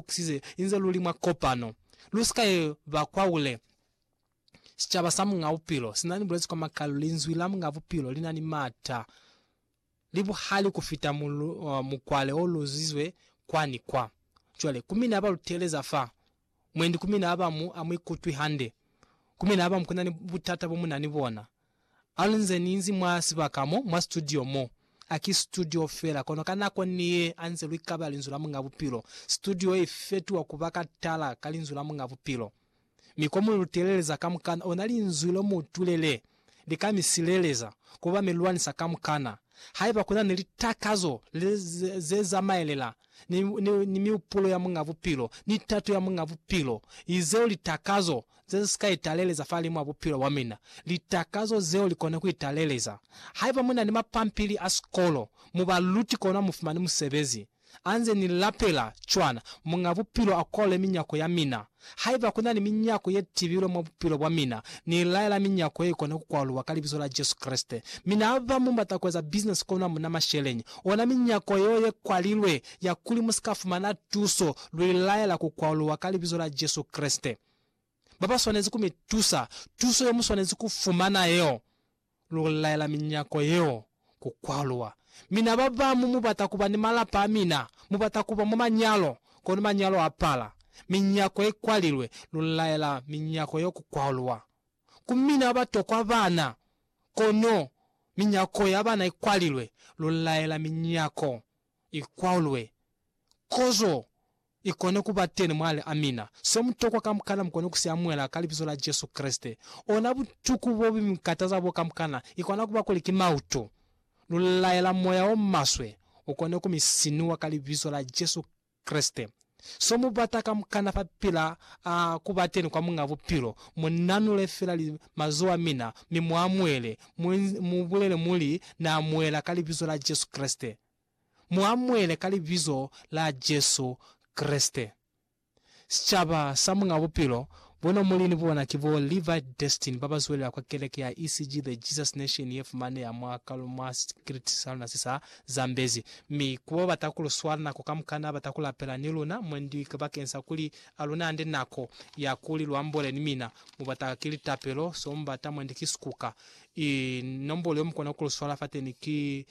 kukisize inze luli mwa kopano. Lusika ye ba kwaule. Sicaba sa Muñ'a Bupilo sinani bulezi kwa makalu, Linzwi la Muñ'a Bupilo linani mata, li buhali kufita mukwale o luzizwe kwa ni kwa. Cwale, ku mina ba lu teeleza fa, mwendi ku mina ba mu, a mu ikutwi hande. Ku mina ba mu, kunani butata bo mu na ni bona. A li nze ni inzi mwa sibaka mo, mwa situdio mo. A ki situdio fela, kono ka nako ni ye a nze lwi kaba Linzwi la Muñ'a Bupilo. Situdio ye i fetuha ku ba ka tala ka Linzwi la Muñ'a Bupilo. Mi ko mu lu teleleza kamukana, ona Linzwi lo mu tulele, li ka mi sileleza, ku ba mi lwanisa kamukana. Haiba ku na ni litakazo le, ze, ze zamaelela ni, ni, ni miupulo ya Muñ'a Bupilo, ni tato ya Muñ'a Bupilo, izeo litakazo ze si ka italeleza fahalimu a bupilo bwa mina, litakazo zeo li kona ku italeleza. Haiba mu na ni mapampili a sikolo, mu ba luti kono mu fumani musebezi. A nze ni lapela cwana, Muñ'a Bupilo a kole minyako ya mina, Haiba ku na ni minyako ye tibilwe mwa bupilo bwa mina, ni laela minyako ye ikona ku kwaluwa ka Libizo la Jesu Kreste. Mina haba mu bata ku eza bisinesi kono hamuna masheleñi, ona minyako yeo ye kwalilwe ya kuli mu si ka fumana tuso, lu i laela ku kwaluwa ka Libizo la Jesu Kreste. Ba ba swanezi ku mi tusa, tuso ye mu swanezi ku fumana yeo. lu laela minyako yeo ku kwaluwa. Mi na ba bañwi mu bata ku ba ni malapa a mina, mu bata ku ba mwa manyalo, kono manyalo a pala. Minyako i kwalilwe, lu laela minyako yeo ku kwaluwa. Ku mina ba ba tokwa bana, kono minyako ya bana i kwalilwe, lu laela minyako i kwaluwe. Kozo I kone ku ba teni mwali a mina. Se mu tokwa kamukana mu kone ku si amuhela ka Libizo la Jesu Kreste. Ona butuku bo bu mi kataza bo kamukana, i kona ku ba kuli ki mautu. Lu laela moya o maswe u kone ku mi sinuwa ka Libizo la Jesu Kreste. So mu bata kamukana fa pila a ku ba teni kwa Muñ'a Bupilo, mu nanule fela li mazoho a mina, mi mu amuhele, mu, mu bulele muli, Na amuhela ka Libizo la Jesu Kreste. mu amuele ka Libizo la Jesu Kreste. Sicaba sa Muñ'a Bupilo, bona muli ni bona ki bo Levi Destin ba ba zwelela kwa keleke ya ECG The Jesus Nation ye fumaneha mwa kalo mwa sitikiliti sa luna se sa Zambezi, mi ku ba bata ku lu swala nako kamukana bata ku lapela ni luna mwendi ki bakeng sa kuli a lu nande nako ya kuli lu ambole ni mina. Mu bata ki litapelo, so mu bata mwendi ki sikuka. I nombolo yo mu kona ku lu swala fateni ki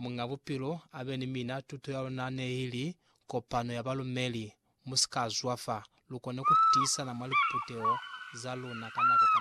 Muñ'a Bupilo a be ni mina. Tuto ya luna ne i li, Kopano ya Balumeli, Mu si ka zwafa. Lu kone ku tiisana mwa liputeho za luna ka nako ka.